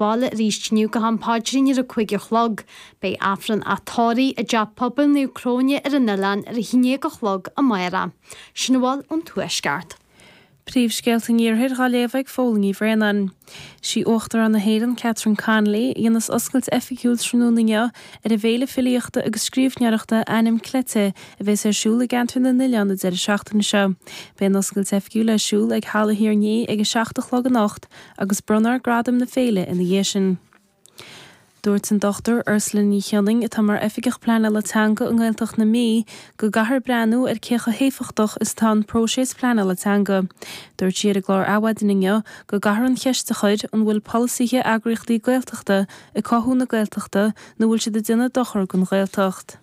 bhaile arís inniu go ham paidrín ar a cúig a chlog. Beidh Aifreann a thórraimh i dTeach Pobail Naomh Cróine ar an oileán ar a haon dhéag a chlog amáireach. Sin a bhfuil ón Tuaisceart. Príomhscéalta an Iarthair dhá léamh ag Fódhla Ní Bhraonáin. Sí Uachtarán na hÉireann, Catherine Connolly, a dhéanas oscailt oifigiúil tráthnóna inniu ar an bhféile filíochta agus scríobhneoireachta Ainm Cleite a bhéas ar siúl i gCeantar na nOileán an deireadh seachtaine seo. Beidh an oscailt oifigiúil ar siúl ag Halla Thír an Fhia ag a seacht a chlog anocht, agus bronnfar gradaim na féile ina dhiaidh sin. Dúirt an Dr Ursula Ní Shionnain, atá mar Oifigeach Pleanála Teanga i nGaeltacht na Mí, go gcaithfear breathnú ar cé chomh héifeachtach is atá an próiseas pleanála teanga. Dúirt sí ar an gclár Adhmhaidin inniu go gcaithfear an cheist a chur, an bhfuil polasaithe eagraíochtaí Gaeltachta ag cothú na Gaeltachta nó bhfuil siad ag déanamh dochar don Ghaeltacht?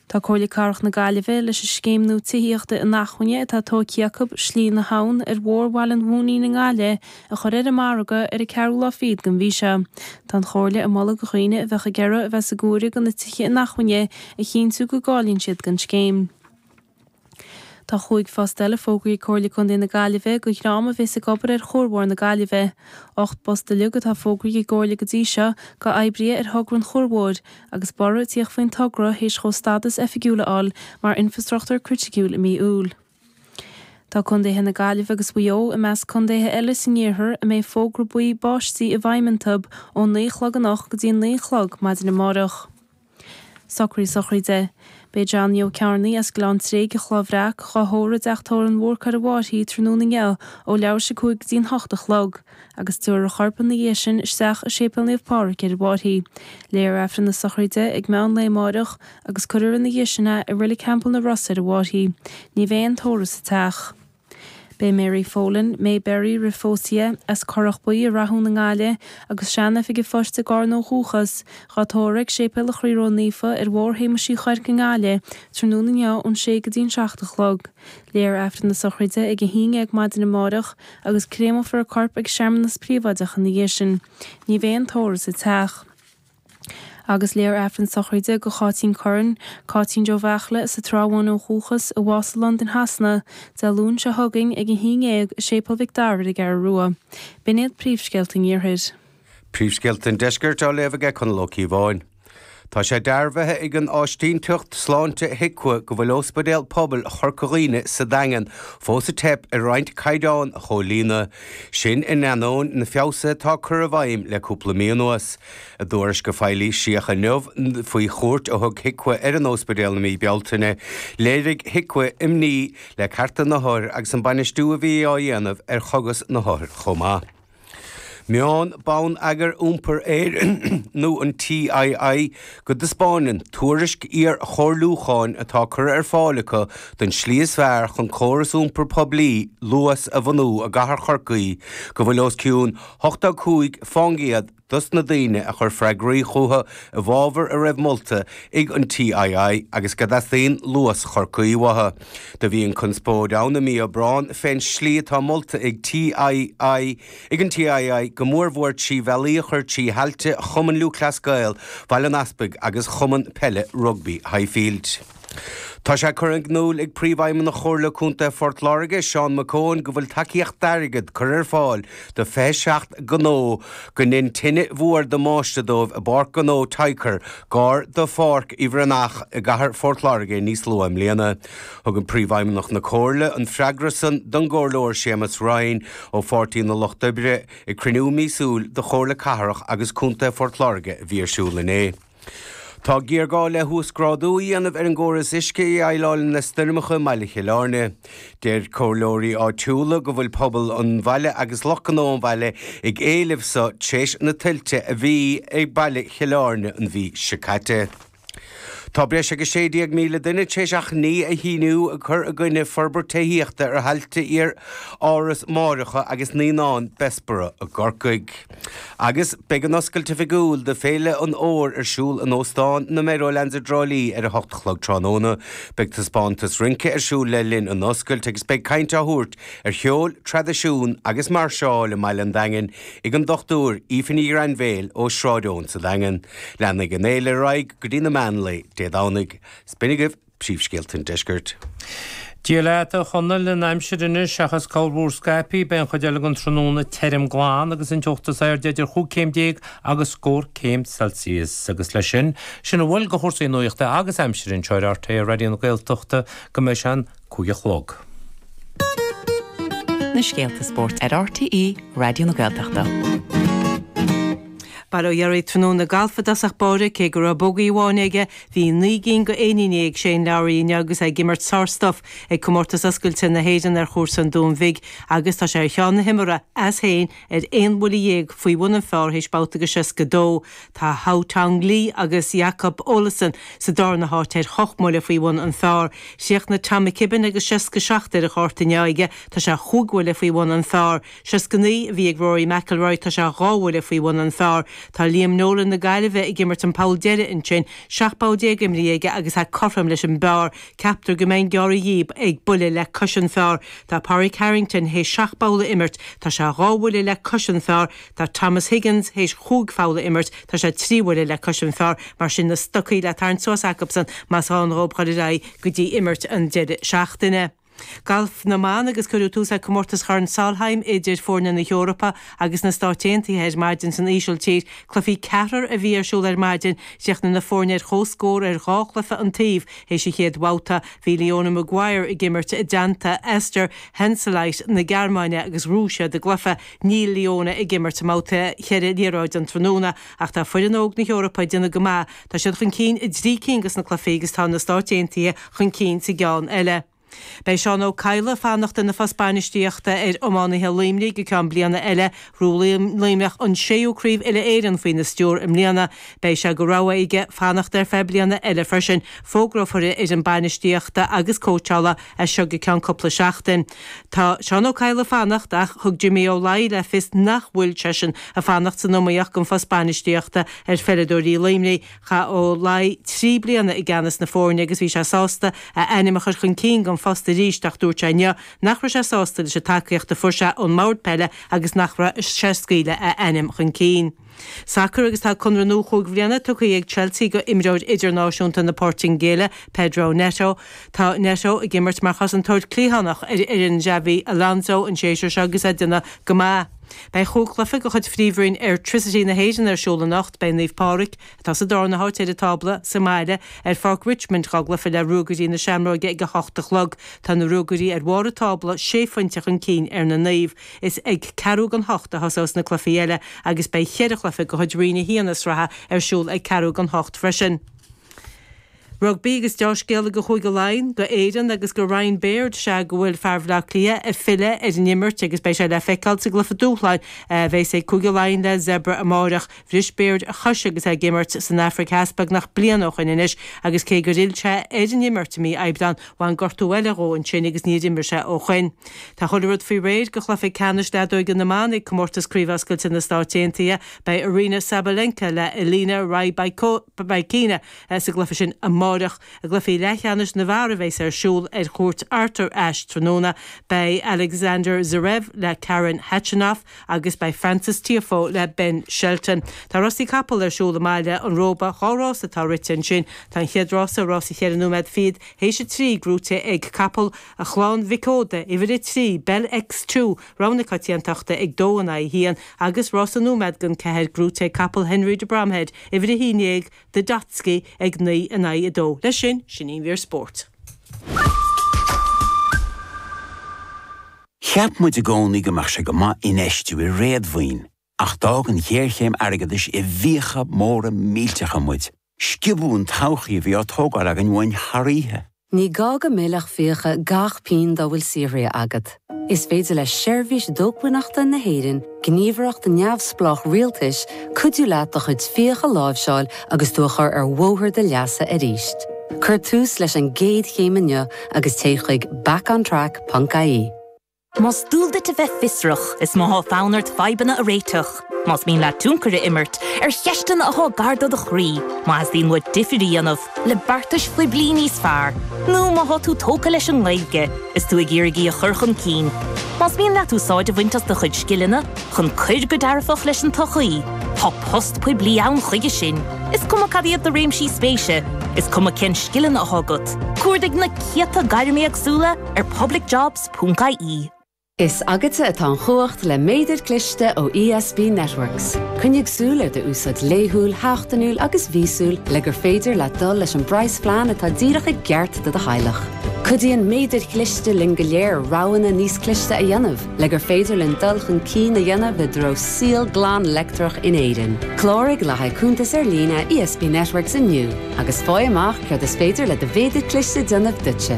Tá Comhairle Cathrach na Gaillimhe leis an scéim nua tithíochta inacmhainne atá tógtha acu, Slí na hAbhann, ar Bhóthar Bhaile an Mhóinín i nGaillimh a chur ar an margadh ar an 4ú lá fichead den mhí seo. Tá an Chomhairle ag moladh do dhaoine a bheadh ag iarraidh a bheith sa gcomhaireamh do na tithe inacmhainne a chinntiú go gcáilíonn siad don scéim. Tá chúig phost eile fógraíthe ag Comhairle Contae na Gaillimhe do dhream a bheas ag obair ar chuarbhóthar na Gaillimhe. Ocht bpost uilig atá fógraíthe ag an gComhairle go dtí seo go oibrithe ar thogra an chuarbhóthair, agus borradh a tíocht faoin togra théis dhó stádas oifigiúil a fháil mar infrastruchtúr criticiúil i mí Iúil. Tá Contaetha na Gaillimhe agus Mhaigh Eo i measc contaetha eile san iarthar a mbeidh fógra buí báistí i bhfeidhm iontub ón naoi a chlog anocht go dtí an naoi a chlog maidin amárach. Socruithe sochraide. Beidh Johnny Ó Cearnaigh as Gleann Tréig an Chloch Bhreac dhá thórramh i dTeach Tórraimh an Bhúrcaigh ar an bhFairche tráthnóna inniu ó leathuair théis a cúig go dtí'n h-ocht a chlog agus tiúrfar a chorp ina dhiaidh sin isteach i Séipéal Naomh Pádraig ar an bhFairche. Léifear Aifreann na sochraide ag meán lae amáireach agus cuirfear ina dhiaidh sin é i Reilig Theampall na Rosa ar an bhFairche. Ní bheidh aon tórramh sa teach. Beidh Mary Folan, May Berry roimh phósadh dhi, as Corrach Buí i Rathún i nGaillimh agus sean-oifig an phoist i gCarna ó dhúchas, dhá tórramh ag Séipéal Chroí Ró Naofa ar Bhóthar Shéamuis Uí Chuirc i nGaillimh tráthnóna inniu ón sé go dtí an seacht a chlog. Léifear Aifreann na sochraide ag a haon dhéag maidin amárach agus créamófar a corp ag searmanas príobháideach ina dhiaidh sin. Ní bheidh aon tórramh sa teach. Agus léifear Aifreann sochraide go Cáitín Curran, Cáitín Joe Bheachla, as an Trá Bháin ó dhúchas, a bhásaigh i Londain Shasana, Dé Luain seo chugainn ag a haon dhéag i Séipéal Mhic Dara ar an gCeathrú Rua. B'in iad príomhscéalta an Iarthair. Príomhscéalta an Deiscirt á léamh aige Conall Ó Cíobháin. Tá sé dearbhaithe ag an áisínteacht sláinte HIQA go bhfuil Óspidéal Pobail Chorca Dhuibhne sa Daingean fós ag teip ar roinnt caighdeáin a chomhlíonadh. Sin in ainneoin na feabhsuithe atá curtha i bhfeidhm le cúpla mí anuas. I dtuairisc a foilsíodh inniu faoi chuairt a thug HIQA ar an ospidéal i mí Bealtaine, léirigh HIQA imní le cearta na hothair agus an bainistiú a bhí á dhéanamh ar chogas na hothair chomh maith. Maíonn Bonneagar Iompair Éireann nó an TII? go dtaispeánann tuairisc iar-chomhairliúcháin atá curtha ar fáil acu don tslí is fearr chun córas iompair poiblí luas a bhunú i gcathair Chorcaí go bhfuil os cionn 85% dos na daoine a chuir freagraí chucu i bhfabhar a raibh molta ag an TII agus go dteastaíonn luas Chorcaí uathu. Do bhí an-chonspóid ann i mí Aibreáin fén slí atá molta ag TII Ag an TII, go mór mhór trí bhealaí a chur trí thailte Chumann Lúthchleas Gael Bhaile an Easpaig agus Chumann Peile Rugbaí Highfield. Tá sé curtha in iúl ag Príomhfheidhmeannach Chomhairle Contae Phort Láirge, Seán McKeown go bhfuil tacaíocht airgid curtha ar fáil do 27 gnó go ndein tine mhór damáiste dóibh i bPáirc Ghnó Tycor, gar do Pháirc Uí Bhreathnaigh i gCathair Phort Láirge níos luath i mbliana. Thug an Príomhfheidhmeannach na comhairle an freagra san don gComhairleoir Séamus Ryan ó Pháirtí na Lucht Oibre ag cruinniú míosúil do Chomhairle Cathrach agus Contae Phort Láirge a bhí ar siúl inné. Tá géarghá le huasgrádú a dhéanamh ar an gcóras uisce a dhéileálann le stoirmeacha i mBaile Chill Airne. Deir comhairleoirí áitiúla go bhfuil pobal an bhaile agus lucht gnó an bhaile ag éileamh seo tréis na tuilte a bhí i mBaile Chill Airne an mhí seo caite. Tá breis agus 16,000 duine tar éis achainí a shíniú ag cur i gcoinne forbairt tithíochta ar thailte iar Áras Máithreacha agus Naíonáin Bessborough i gCorcaigh. Agus beidh an oscailt oifigiúil do Féile an Fhómhair ar siúl in Óstán na Meadowlands i dTrá Lí ar a 8 a chlog tráthnóna. Beidh taispeántas rince ar siúl le linn an oscailt agus beidh caint á thabhairt ar cheol, traidisiún agus mairseáil i mBaile an Daingin. ag an Dr Aoife Ní Ghrainbhéil ó Sráid Eoin sa Daingean. Leanfaidh an fhéile ar aghaidh go dtí na meán lae Dé Domhnaigh. Is b'in agaibh príomhscéalta an deiscirt. Dia leat, a Chonaill, an aimsir anois, seachas corrmhúr scaipthe, beidh an chuid eile den tráthnóna tirim glan agus an teocht is airde idir chúig chéim déag agus scór céim Celsius. Agus leis sin, sin a bhfuil de chúrsaí nuachta agus aimsire anseo ar RTÉ Raidió na Gaeltachta, go mbeidh sé an! cúig a chlog. na scéalta spóirt ar RTÉ Raidió na Gaeltachta. Bail ó Dhia oraibh tráthnóna galf i dtosach báire, cé go raibh bogey amháin aige, bhí naoi gcinn de éiníní ag Shane Lowry inniu agus é ag imirt sárstuif ag Comórtas Oscailte na hÉireann ar chúrsa an Dúin Bhig agus tá sé ar cheann na himeartha as féin Ar aon bhuille dhéag faoi bhun an phár théis babhta go 62, tá Haotong Li agus Jakob Olesen sa darna háit ar ocht mbuille faoi bhun an phár. Chríochnaigh Tom McKibbin agus 67 ar an chárta inné aige, tá sé chúig bhuille faoi bhun an phár. 69 a bhí ag Rory McIlroy, tá sé dhá bhuille faoi bhun an phár. Tá Liam Nolan na Gaillimhe ag imirt an poll deiridh ansin, seacht bpoll déag imeartha aige agus é cothrom leis an bpár, Ceaptar go mbeidh an gearradh inniubh ag buille le cois an phár tá Pádraig Harrington théis seacht bpoll a imirt, tá sé dhá bhuille le cois an phár tá Thomas Higgins théis chúig pholl a imirt, tá sé trí bhuille le cois an phár mar sin na stocaí le tarraingt suas acubsan más áil leob a dhul ar aghaidh go dtí imirt an deireadh seachtaine. Galf na mBan agus cuireadh tús le Comórtas Chorn Solheim idir foirne na hEorpa agus na Stáit Aontaithe ar maidin san Ísiltír. Cluichí ceathrair a bhí ar siúl ar maidin, chríochnaigh na foirne ar chomhscór ar dhá chluiche an taobh, Théis a chéad bhabhta, bhí Leona Maguire ag imirt i dteannta Esther Henseleit na Gearmáine agus bhuadar sin a gcluiche. Níl Leona ag imirt i mbabhta cheithre liathróid an tráthnóna ach tá foireann óg na hEorpa ag déanamh go maith. Tá siad chun cinn i dtrí cinn de na cluichí agus tá na Stáit Aontaithe chun cinn sa gceann eile. Beidh Seán Ó Cadhla ag fanacht ina phost bainistíochta ar iománaithe Luimnigh go ceann bliana eile. Bhuaigh Luimneach an séú craobh uile-Éireann faoina stiúr i mbliana. Beidh sé go rogha aige fanacht ar feadh bliana eile freisin. Fógrófar a fhoireann bainistíochta agus cóitseála as seo go ceann cúpla seachtain. Tá Seán Ó Cadhla ag fanacht ach thug Jimmy Ó Laoi le fios nach bhfuil seisean ag fanacht san iomaíocht don phost bainistíochta ar pheileadóirí Luimnigh. Chaith Ó Laoi trí bliana i gceannas na foirne agus bhí sé sásta a ainm a chur chun cinn don phost arís ach dúirt sé inniu nach raibh sé sásta leis an tacaíocht a fuair sé ón mbord peile agus nach raibh sé ag scaoileadh a ainm chun cinn sacar agus tá conradh nua chúig bhliana tugtha ag Chelsea go imreoir idirnáisiúnta na Poirtingéile, Pedro Neto. Tá Neto ag imirt mar chosantóir cliathánach ar fhoireann Xabi Alonso an séasúr seo agus é ag déanamh go maith. Beidh chúig chluife de chuid Phríomhroinn Airtricity na hÉireann ar siúl anocht. Beidh Naomh Pádraig, atá sa dárna háit ar an tábla, sa mbaile ar Pháirc Richmond dhá gcluife le Ruagairí na Seamróige ag a hocht a chlog. Tá na Ruagairí ar bharr an tábla, sé phoinnte chun cinn ar na Naomh. Is ag ceathrú gan hocht a thosós na cluifí eile agus beidh cheithre chluife de chuid Roinn a hAon na sraithe ar siúl ag ceathrú gan hocht freisin. Rugbaí agus dea-scéala go Chúige Laighean, go Éireann agus go Ryan Baird sea go bhfuil fear Bhleá Cliath ag filleadh ar an imirt agus beidh sé le feiceáil sa gcluiche dúshláin a bheas ag Cúige Laighean le Zebre amáireach. Bhris Baird a chois agus é ag imirt san Afraic Theas beagnach bliain ó shoin anois agus cé gur fhill sé ar an imirt i mí Aibreán bhain gortú eile dhó ansin agus níor imir sé ó shoin. Tá chuile rud faoi réir go Chluiche Ceannais Leadóige na mBan ag Comórtas Craobh Oscailte na Stáit Aontaithe. Beidh Aryna Sabalenka le Elina Rybakina Sa gcluiche sin amáireach, i gcluiche leathcheannais na bhfear a bheas ar siúl ar chúirt Arthur Ashe tráthnóna, beidh Alexander Zverev le Karen Khachanov agus beidh Frances Tiafoe le Ben Shelton. Tá rásaí capall ar siúl i mBaile an Róba, dhá rás atá rite ansin. Tá an chéad rása, rás an cheithre nóiméad fichead théis a trí, gnóite ag capall Chlann Mhic Óda, Uimhir 3, Bell X-Two, roghnú coitiantachta ag dó in aghaidh a haon, agus rás an nóiméad dhon ceathair gnóite ag capall Henry de Bromhead, Uimhir 11, de Dotski ag 9 in aghaidh 2. Leis sin, sin an mhír spóirt. Cheap muid i gcónaí go mbeadh sé go maith infheistiú i réadmhaoin ach d'fhág an ghéarchéim airgeadais i bhfiacha móra millteacha muid. Sciobadh an todhchaí a bhí á tógáil againn uainn thar oíche. Ní gá go millfeadh fiacha gach pínn dá bhfuil saothraithe agat. Is féidir le Seirbhís Dócmhainneachta na hÉireann, gníomhaireacht neamhspleách rialtais, cuidiú leat do chuid fiacha a láimhseáil agus tú a chur ar bhóthar do leasa aríst. Cuir tús leis an gcéad chéim inniu agus téigh chuig backontrack.ie. Más dual duit a bheith fiosrach, is má tá fonn ort fadhbanna a réiteach, más mian leat tionchar a imirt ar cheisteanna atá gar do do chroí, má theastaíonn uait difríocht a dhéanamh le beartais phoiblí níos fearr, nó má tá tú tógtha leis an nGaeilge is tú ag iarraidh í a chur chun cinn, más mian leat úsáid a bhaint as do chuid scileanna chun cuir go dearfach leis an tsochaí, tá post poiblí ann chuige sin, is cuma cad iad do réimsí spéise, is cuma cén scileanna atá agat. Cuardaigh na céadta gairm éagsúla ar Public Jobs. Ponc ie. Is agatsa atá an chumhacht le méadair chliste ó ESB Networks. Coinnigh súil ar do úsáid laethúil, sheachtainiúil agus mhíosúil le gur féidir leat dul leis an bpraghasphlean atá díreach i gceart do do theaghlach. Cuidíonn méadair chliste linn go léir roghanna níos cliste a dhéanamh le gur féidir linn dul chun cinn a dhéanamh i dtreo saol glan leictreach in Éirinn. Cláraigh le haghaidh cuntas ar líne ESB Networks inniu agus faigh amach céard is féidir le do mhéadar cliste déanamh duitse.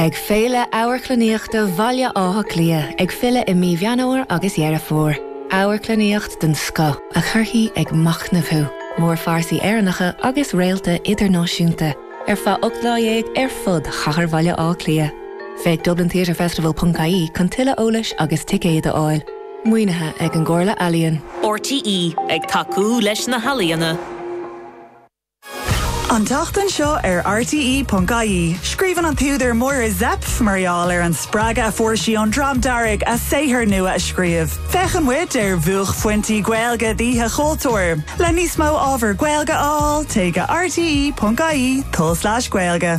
Beidh Féile Amharclannaíochta Bhaile Átha Cliath ag filleadh i mí Mheán Fhómhair agus Dheireadh Fómhair. Amharclannaíocht den scoth a chuirfidh ag machnamh thú, mórphearsaí Éireannacha agus réalta idirnáisiúnta, ar feadh ocht lá dhéag ar fud chathair Bhaile Átha Cliath. Féach dublintheatrefestival.ie chun tuilleadh eolais agus ticéid a fháil. Maoinithe ag an gComhairle Ealaíon. RTÉ ag tacú leis na healaíona. An tseachtain seo ar RTE.ie, scríobhann an t-údar Máire Zepf mar gheall ar an spreagadh a fuair sí ón Dream Dearg a saothar nua a scríobh. Féachann muid ar bhuaicphointí Gaeilge d'Oíche Chultúir. Le níos mó ábhar Gaeilge a fháil, téigh go rte.ie tulslais gaeilge.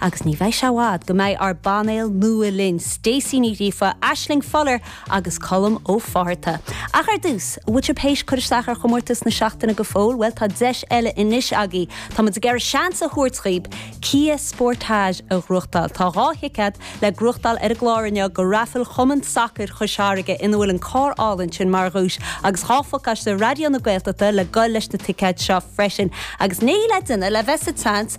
Agus ní bheidh sé i bhfad go mbeidh ár bpainéal nua linn, Stacey Ní Ghríofa, Aisling Fuller agus Colm Ó Fátharta. Ach ar dtús, an bhfuil sibh tar éis cur isteach ar chomórtas na seachtaine go fóill? Bhuel, tá deis eile anois agaibh. Táimid ag iarraidh seans a thabhairt dhaoibh Kia Sportage a ghnóthachtáil. Tá dhá thicéad le gnóthachtáil ar an gclár inniu go raifil Chumann Sacair Chois Fharraige ina bhfuil an carr álainn sin mar dhuais agus dhá phacáiste Raidió na Gaeltachta le ghoil leis na ticéid seo freisin. Agus níl le duine le bheith sa tseans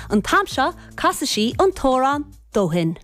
An t-am seo casfaidh sí an t-amhrán dó shin.